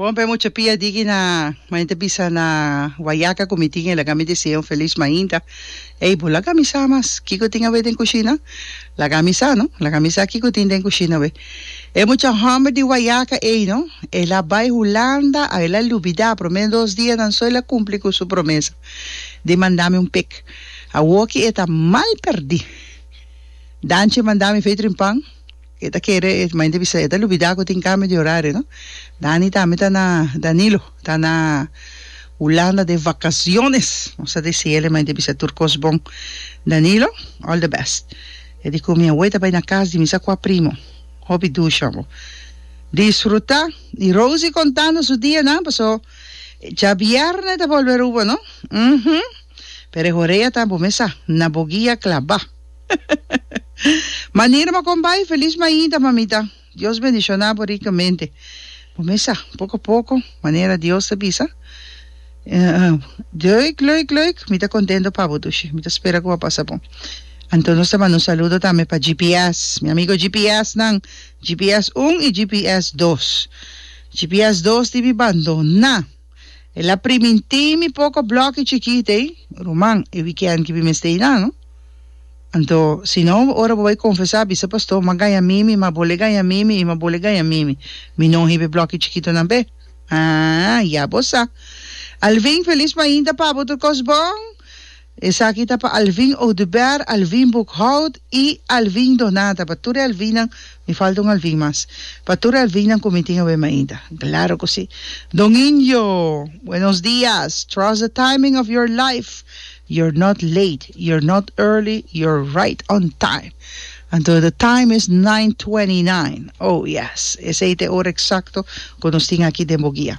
Bon pe mucha pia digi na mane ta bisa na guayaca cu mi tin e laga mi desea un feliz mainta ey bo laga mi sa mas kico tin awe den cushina laga mi sa no laga mi sa kico tin den cushina awe e mucha homber di guayaca ey no el a bay hulanda a el a lubida prome dos dianan so el a cumpli cu su promesa di manda mi un pek awoki e ta mal perdi danchi manda mi fetrin pan E ta kere e main ta bisa e ta lubida ku tin kambio di orario no. Dani tambe ta na Danilo ta na Hulanda de vakasiones nos ta desi el e main ta bisa tur kos bon Danilo all the best e di ku mi awe ta bai na kas di mi sa kua primo hopi dusha bo disfruta i Rosie kontando su dianan paso djabierne ta bolbe Aruba no uhumm pero e horea ta bo me sa na bo guia klabá. Manera bo con bai, feliz mainta mamita. Dios bendiciona bo ricamente. Bo mesa, poco poco, manera Dios ta bisa. Leuk, leuk, leuk. Mi ta contento pa bo dushi. Mi ta spera cu a pasa bon. Anto nos ta manda un saludo tambe pa GPS. Mi amigo GPS nan. GPS un y GPS dos. GPS dos di mi bandona. El a primintí mi poko blòki chikit ei, ruman, e wikènt ki mi mester i na, no? Anto, si no, ora bo bai konfesá, a bisa pastó, M'a gaña mimi, m'a bole gaña mimi i m'a bole gaña mimi. Mi no hiba e blòki chikitonan p'e. Aa, ya bo sa. Alvin, felis mainta p'abo otro kos bon. Esaki ta pa Alvin Oduber, Alvin Boekhout y Alvin Donata. Pa tur e Alvinnan, mi falta un Alvin mas. Pa tur e Alvinnan cu mi tin awe mainta. Claro cu si. Don Indio, Buenos dias. Trust the timing of your life. You're not late, you're not early, you're right on time. Anto the time is nine twenty nine. Oh yes. Esey ta e ora exacto cu nos tin aki den Boguia.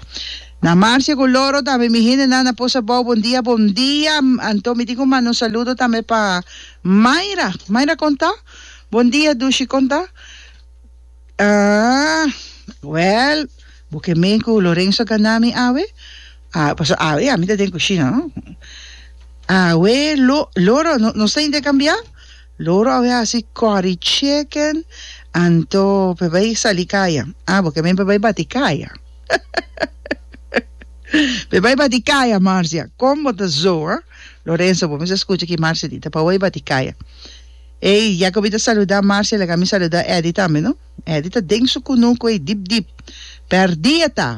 Na Marcia cu Loro tambe mi hendenan a pos abao bon dia bon dia anto mi tin cu manda un saludo tambe pa Mayra Mayra con ta? Bon dia Dushi con ta? Ahh well bo ke men cu Lorenzo gana mi awe? Ahh paso awe ami ta den cushina no awe Lo Loro nos ta intercambia? Lo ora awor e hasi kòri chicken anto p'e bai sali kaya ah bo ke men p'e bai bati kaya p'e bai bati kaya Marcia kon bo ta zo ah Lorenzo bo mester skucha ki Marcia di ta pa bai bati kaya ey ya ke bo ta saluda Marcia laga mi saluda Eddy tambe no Eddy ta den su kunuku ey dip dip pèrdí e ta.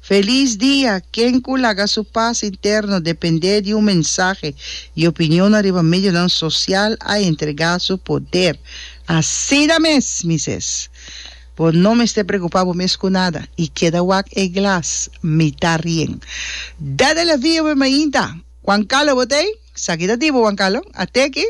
Felis dia ken ku laga su pas interno dependé di un mensahe i opinionnan riba medionan sosial a entregá su poder. Asina mes mi ses. Bo no mester prekupá bo mes ku nada i keda wak e glas mitá rien. Dat el a via bo mainta. Wan kalo bo ta ei? Sa ki ta di bo, Wan Kalo? Ateki?